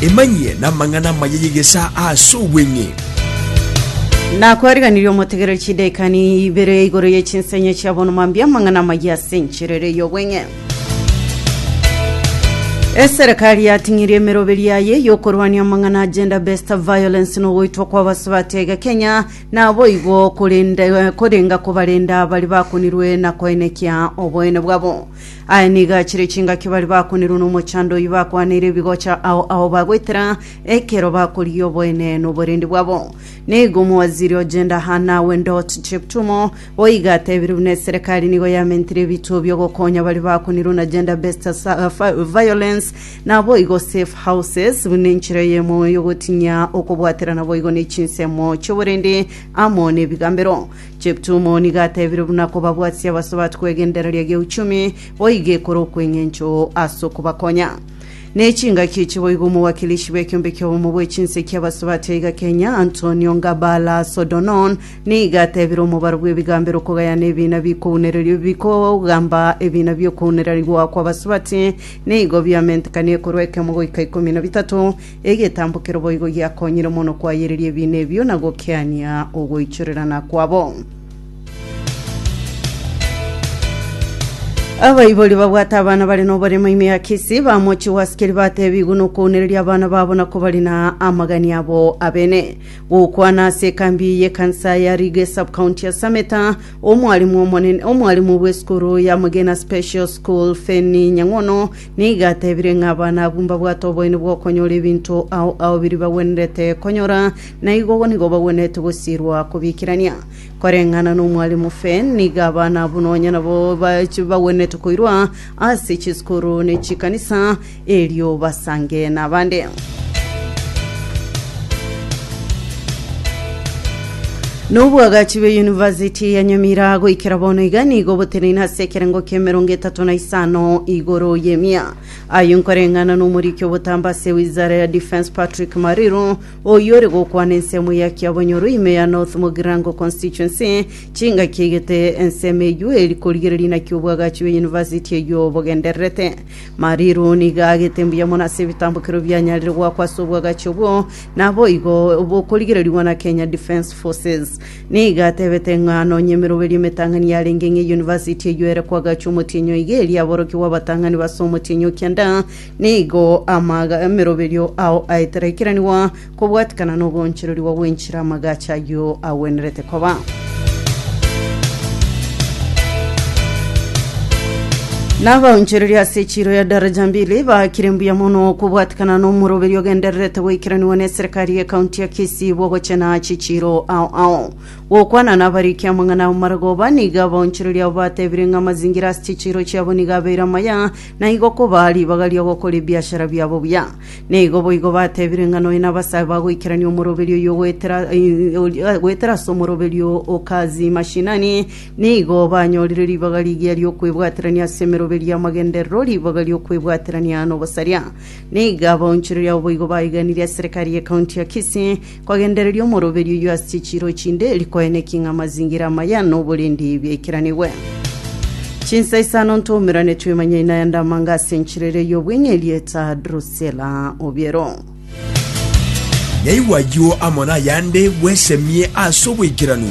Emanyie namang'ana amaya y'egesaa ase obweng'e. Nakwariganirie omotegereri chidaika ni ibere igoro ye chinsenye chia bono mambia amang'ana amaya ase enchera ere y'obweng'e. Eserekari yating'irie emeroberi yaye yokorwania amang'ana a gender based violence na ogoitwa kwa abasubati aiga Kenya naboigo korende korenga kobarenda abari bakunirwe na koenekia oboene bwabo. Aye nigo achire chingaki baria bakonerwa nomochando oyio bakwaneire ebigocha ao ao bagoetera ekero bakorigia oboene noborende bwabo. Nigo omowaziri o Gender Hannah Wendot Cheptumo boigo atebire buna eserekari nigo yamentire ebituo biogokonya baria bakonerwa na gender based violence naboigo safe houses buna enchera eyemo yogotinyia okobwaterana boigo ne chinsemo chioborende amo nebigambero. Cheptum oo nigo atebire buna kobabwatia abasubati kw'egendereria gi'euchumi boige kore okw'engencho ase okobakonya ne chingaki echi boigo omowakilishi bw'ekiombe ki'obomo bwe chinse ki'abasubati aiga Kenya Antonio Ngabala Sodonon nigo atebire omobaro bw'ebigambero okogayana ebina bikounererio bikogamba ebina bi'okounererigwa kw'abasubati nigo biamentekanie korwa ekemo goika ikomi na bitato Egetambokero boigo giakonyire mono koayereria ebiina ebio na gokiania ogoichorerana kwabo. Abaibori babwate abana bare noboremo ime ya Kisii bamochie gwasikeri batebigwe nokounereria abana babo na kobarina amagani abo abene. Gokwana ase ekambi y'ekansa ya Rige subcounty ya Sameta, omwarimu omonene omwarimu bw'esukuru ya Mugina Special School Fenny Nyang'ono Nigo atebire ng'a abana abwo mbabwate oboene bw'okonyora ebinto ao ao biria bagwenerete konyora, na igo ogo nigo bagwenerete gosiirwa kobiikerania. Koreng'ana n'omwari omofe, nigo abana abwo nonya nabo bache bagwenerete koirwa ase chisukuru ne chikanisa, erio basange nabande. Nobwagachi bwe University ya Nyamira goikera bono iga nigo oboteneine ase ekerengo ki'emerongo etato na isano igoro y'emia. Ayio nkoreng'ana n'omoriki obotambe ase Wizara ya Defence Patrick Mariru, oyio ore gokwana ensemo ya Kiabonyoro ime ya North Mugirango Constituency chingaki egete ensemo eyio eri korigereria naki obwagachi bwe University eyio bogendererete. Mariru nigo aagete mbuya mono ase ebitambokero bianyarire goakwa ase obwagachi obwo, Naboigo bokorigererigwa na Kenya Defence Forces nigo atebete ng'a nonya emeroberio emetang'ani yarenge ng'a eyunivasiti eyio ere koagachwa omotienyi o iga eria aborokigwa abatang'ani base omotienyi o kianda nigo amaga emeroberio ao aetera ekeranigwa kobwatikana na oboonchererigwa bw'enchera amagacho ayio agwenerete koba. Na abaonchoreria ase echiro ya daraja mbili baakire mbuya mono kobwatikana n'omoroberio ogendererete goikeranigwa n'eserekari y'ekaunti ya Kisii bw'ogochena chichiro ao ao. Gokwana nabarikia amang'ana ao maragoba, nigo abaonchoreria abo batebire ng'a amazingira ase chichiro chiabo nigo abeire amaya, na igo koba ribaga ri'ogokora ebiashara biabo buya. Nigo boigo batebire ng'a nonya nabasae bagoikerania omoroberio oyio goetera goetera ase omoroberio o Kazi Mashinani, nigo banyorire ribaga rigiya riokwebwaterania ase emeroberio y'amagenderero, ribaga riokwebwaterania nobosaria. Nigo abaonchoreria abo boigo baiganirie eserekari ye County ya Kisii, Kwagendereria omoroberio oyio ase chichiiro chinde, rikoe neki ng'a amazingira amaya noborindi biaikiranigwe. Chinsa isano ntoumerane twemanyaine na yande amanga ase enchera eria y'obweng'e erieta Drusela Obiero. Yaigwa ayio amo nayande bwesemie ase oboikeranu.